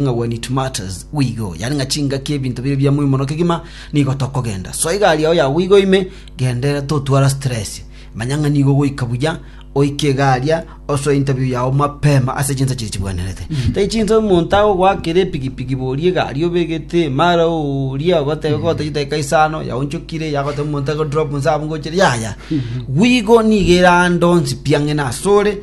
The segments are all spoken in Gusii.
ng'a when it matters, we go, yaani ng'a chingaki ebinto biria bia moimo no kegima, nigo tokogenda. Soa egari yao yagwa igo ime, genderera totwara stress. Manya ng'a nigo goika buya, oike egaria, osoe interview yao mapema ase chinsa chiria chibwenerete. Tari chinsa omonto agogoakera epigipigi boria egari obegete emara ooria, ogotebe gotogia edaika isano, yao onchokire, yagoteba omonto agodrop inse abwo ngochire, yaya. We go nigo erande onsi piang'ene asore,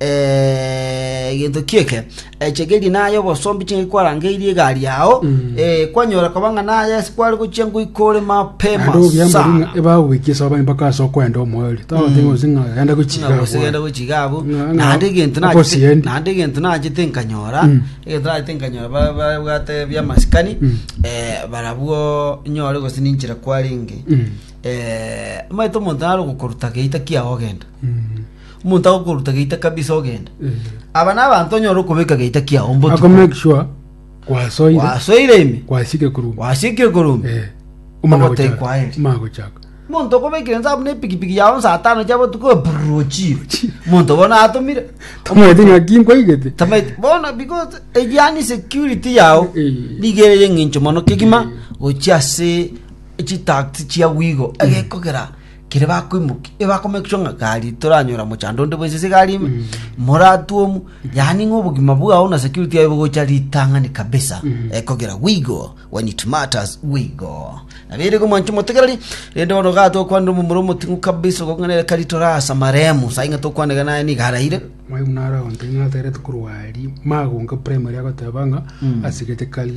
egento ki'eke, echegeri naye obosombi chingaki kwarangeirie egari yao, eh, kwanyora koba ng'a naye ase kware gochia ngoika ore mapema Naende obuya sana. mbori ng'a ebagobekire soba ni mpaka ase okwenda omoerio. Tagotebi gose ng'a genda gochiga Ng'a gose genda abwo. gochiga abwo Ng'a- ng'a- naende egento nachete okosiendi. naende egento nachete nkanyora Mm. egento nachete nkanyora ba- babwate biamasikani Mm. eh, barabwo nyore gose ninchire kwarenge Mm. eh, omanyete omonto naro gokoruta geita kiago ogenda Mm. Omonto agokoruta geita kabisa ogende. Aba n'abanto onyora okobeka geita kiao ako mbotuko. make sure kwasoire Wasoire ime. kwasike kuruma Wasikire korumba. Eh, omana Ogotei gochaka. kwaere. Omana gochaka Monto okobekire nsabu ne pikipiki yao saa tano chia botuko brrr, ochire. Monto bono atomire. tamanyete ng'aki nkwaigete Tamaiti bono because egiani security yao Eh. nigo ere eng'encho mono kegima gochia ase chitax chia wigo egekogera Kere bakoimoki e bako make sure ng'a gari toranyora mochando onde bwense se gari ime moratwomu yani ng'a obogima bwao na security yao bogocha ritang'ani kabisa ekogera we go when it matters we go nabere ko mwancho motegereri rende bono ga tokwanera omomura omoting'u kabisa okong'anere kari torasa maremu sai ng'a tokwanega naye niga araire Mwaimu naro agontebia ng'a atagerete korwa aria magonka primary agoteba ng'a asigete kari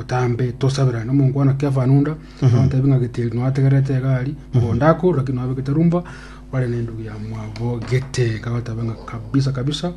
otambe tosaberane omonkwana kefanunda agotebi ng'a geteri nwategerete egari mogondo ako lakini nwabegete rumba bare nendugu ya mwabo gete kagotabe ng'a kabisa kabisa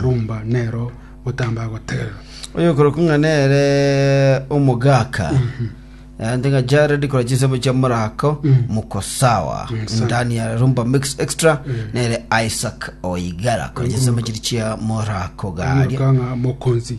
rumba nero otamba agotegerera oyo koroku ng'a nere omogaka ande ng'a jared kora chinsemo chia morako moko sawa ndani ya rumba mix extra nere isaac oigara kora chinsemo chiri chia morako garia kanga mokonzi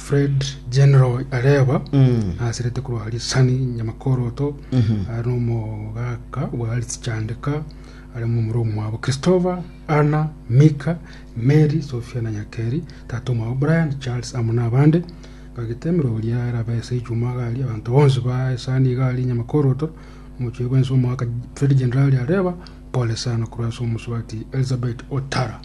Fred General areba aserete korwa Lisani Nyamakoroto are nomogaka bwa Lisichandeka are momura omwabo Christopher Anna Mika Mary Sofia na Nyakeri tata omwabo Brian Charles amo nabande bagete emerwa oria erabe ase echuma gari abanto bonsi ba esani gari Nyamakoroto omochie bwensi omogaka Fred General areba pole sana korwa ase omosubati Elizabeth Otara